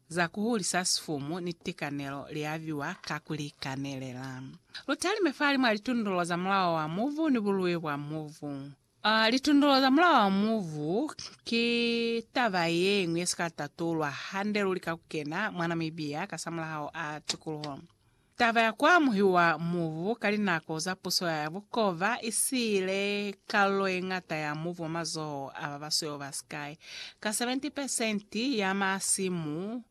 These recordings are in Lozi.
za ku hulisa sifumu ni tikanelo li aviwa ka ku li kanelela. Lu talime fahalimw'a litundulo za mulao wa mubu ni bului bwa mubu. A Litundulo za mulao wa mubu ki taba ye ñwi ye si ka tatulwa hande luli ka ku kena mwa Namibia kasamulaho a tikuluho. Taba ya ku amuhiwa mubu ka linako za puso ya bukova i siile kalulo ye ñata ya mubu mwa mazoho a ba basweu ba sikai ka 70 pesenti ya masimu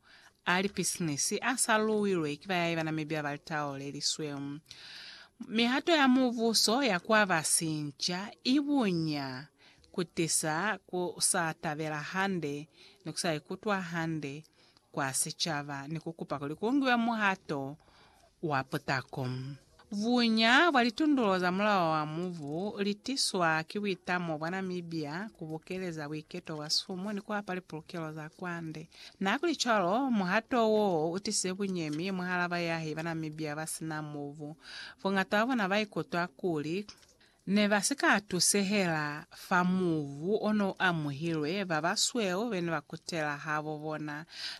a lipisinisi a sa luwilwe ki bayai ba na mi byaba litao le lisweu. Mihato ya mubuso ya ku aba sinca i bunya ku tisa ku sa tabela hande ni ku sa ikutwa hande kwa sicaba ni ku kupa kuli ku ngiwe muhato wa putako. Buña bwa litundulo za mulao wa mubu li tiswa ki buitamo bwa Namibia ku bokeleza buiketo bwa sumu ni ku hapa lipulukelo za kwande. Nakulicwalo, muhato wo u tisize bunyemi mwahal'a bayahi ba Namibia ba si na mubu. Boñata bwa bona ba ikutwa kuli Ne ba si ka tusehela fa mubu o n'o amuhilwe, ba basweu be ne ba kutela habo bona.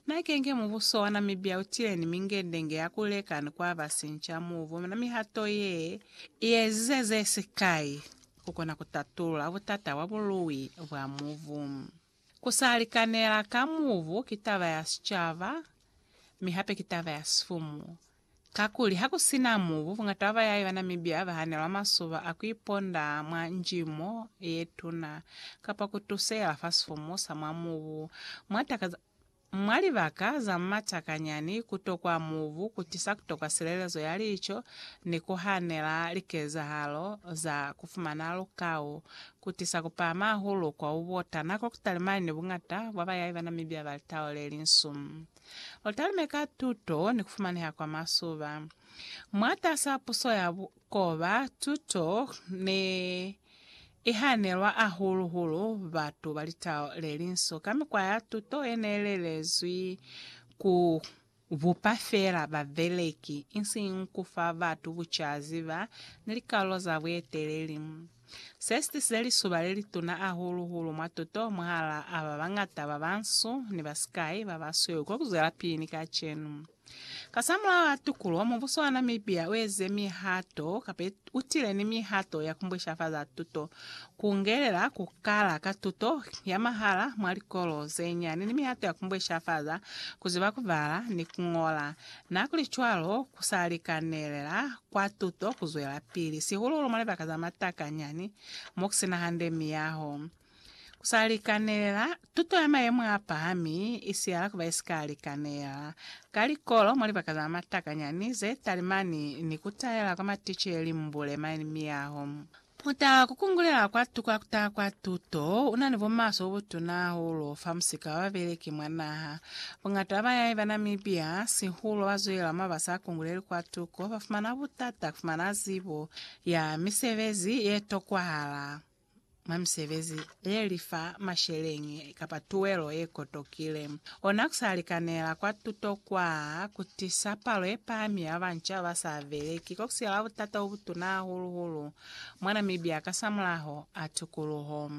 Na kenge mubuso wa Namibia u tile ni mingendenge ya ku leka ni ku aba sinca mubu, mi na mihato ye i ezize ze sikai ku kona ku tatulula butata bwa bului bwa mubu. Ku sa likanela ka mubu ki taba ya sicaba, mi hape ki taba ya sifumu. Kakuli ha ku si na mubu, bungata bwa bayai ba Namibia ba hanelwa masuba a ku iponda mwa njimo ye tuna kapa ku tusela fa sifumu sa mwa mubu mwa taka za Mwa libaka za matakanyani, ku tokwa mubu ku tisa ku tokwa silelezo ya lico ni ku hanela likezahalo za ku fumana lukau, ku tisa ku pahama hahulu kwa u bota na kwa ku talimani ni buñata bwa bayai ba Namibia ba litau le linsu. U talime ka tuto ni ku fumaneha kwa masuba. Mwatas'a puso ya bukoba, tuto ni. i hanelwa ahulu-hulu batu ba litau le linso ka mikwa ya tuto ye ne lelezwi ku bupa feela babeleki, isiñi ku fa batu bucazi ba ni likalolo za bueteleli. Se si tisize lisuba le lituna ahulu-hulu mwa tuto mwahalaa ba bañata ba bansu ni ba sikai ba basweu ko ku zwelapili ni kacenu. Kasamulaho a tukulo, mubuso wa Namibia ueze mihato kapa utile ni mihato ya kumbwishafaza tuto, kungelela kukala ka tuto ya mahala mwa likolo zenyani ni mihato ya kumbwishafaza kuziba kubala ni kungola. Nihakuli cwalo, kusalikanelela kwa tuto kuzwelapili, sihulu-hulu mwa libaka za matakanyani mokusina hande miyaho. Ku sa likanelela, Tuto ya mayemo a pahami i siyala ku ba ye si ka likanelela. Ka likolo, mwa libaka za matakanyani ze talimani ni ku taela kwa maticeli mbule mani miyaho, ku taha ku kungulela kwa tukwa ku taha kwa tuto u na ni bumaswe bo butuna hahulu fa musika wa babeleki mwa naha. Buñata ba bayahi ba Namibia, sihulu ba zwela mwa ba sa kunguleli kwa tuko, ba fumana butata ku fumana zibo ya misebezi ye tokwahala. mwa misebezi ye li fa masheleñi kapa tuelo ye kotokile. Ona ku sa likanela kwa tuto kwa ku tisa palo ye pahami ya banca ba sa beleki ko ku sila butata bo butuna hahulu-hulu mwa Namibia kasamulaho a tukuluho.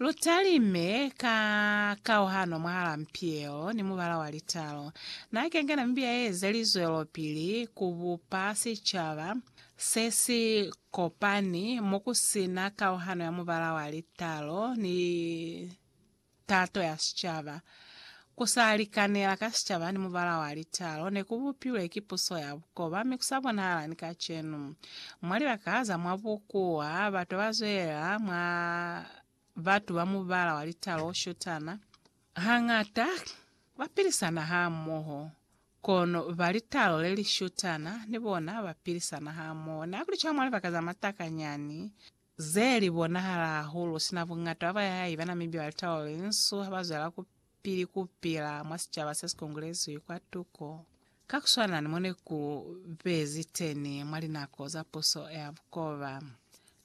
Lu talime ka kauhano mwahal'a mpielo ni mubala wa litalo. Na kenga Namibia ye eza lizwelopili ku bupa sicaba se si Kopani mo ku si na kauhano ya mubala wa litalo ni tato ya sicaba. Ku sa likanela ka sicaba ni mubala wa litalo ne ku bupilwe ki puso ya bukoba mi ku sa bonahala ni kacenu. Mwa libaka za mwa bukuwa, batu ba zwelela mwa batu ba mubala wa litalo o shutana. Hañata ba pilisana hamoho Kono ba litalo le li shutana ni bona ba pilisana hamoho. Na kuli cwalo mwa libaka za matakanyani ze li bonahala hahulu, sina buñata ba bayahayi ba na mibi ba litalo le linsu ha ba zwela ku pili ku pila mwa sicaba se si kongolezwi kwa tuko, ka ku swana ni mo ne ku bezi teni mwa linako za puso ya bukoba.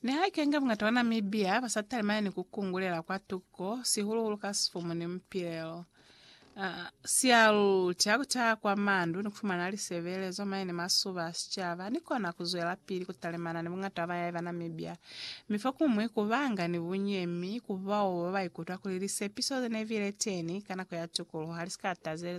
Nihaike-nge bungata ba Namibia ba sa talimani ni ku kungulela kwa tuko, sihulu-hulu ka sifumu ni mupilelo, sia lu tia ku taha kwa mandu ni ku fumana lisebelezo mane ni masuba a sicaba, ni kona ku zwelapili ku talimana ni bungata ba bayai ba Namibia, mi fokuñwi ku banga ni bunyemi ku bao ba ba ikutwa kuli lisepiso ze ne bile teni ka nako ya tukuluho ha li si ka tazelezwa.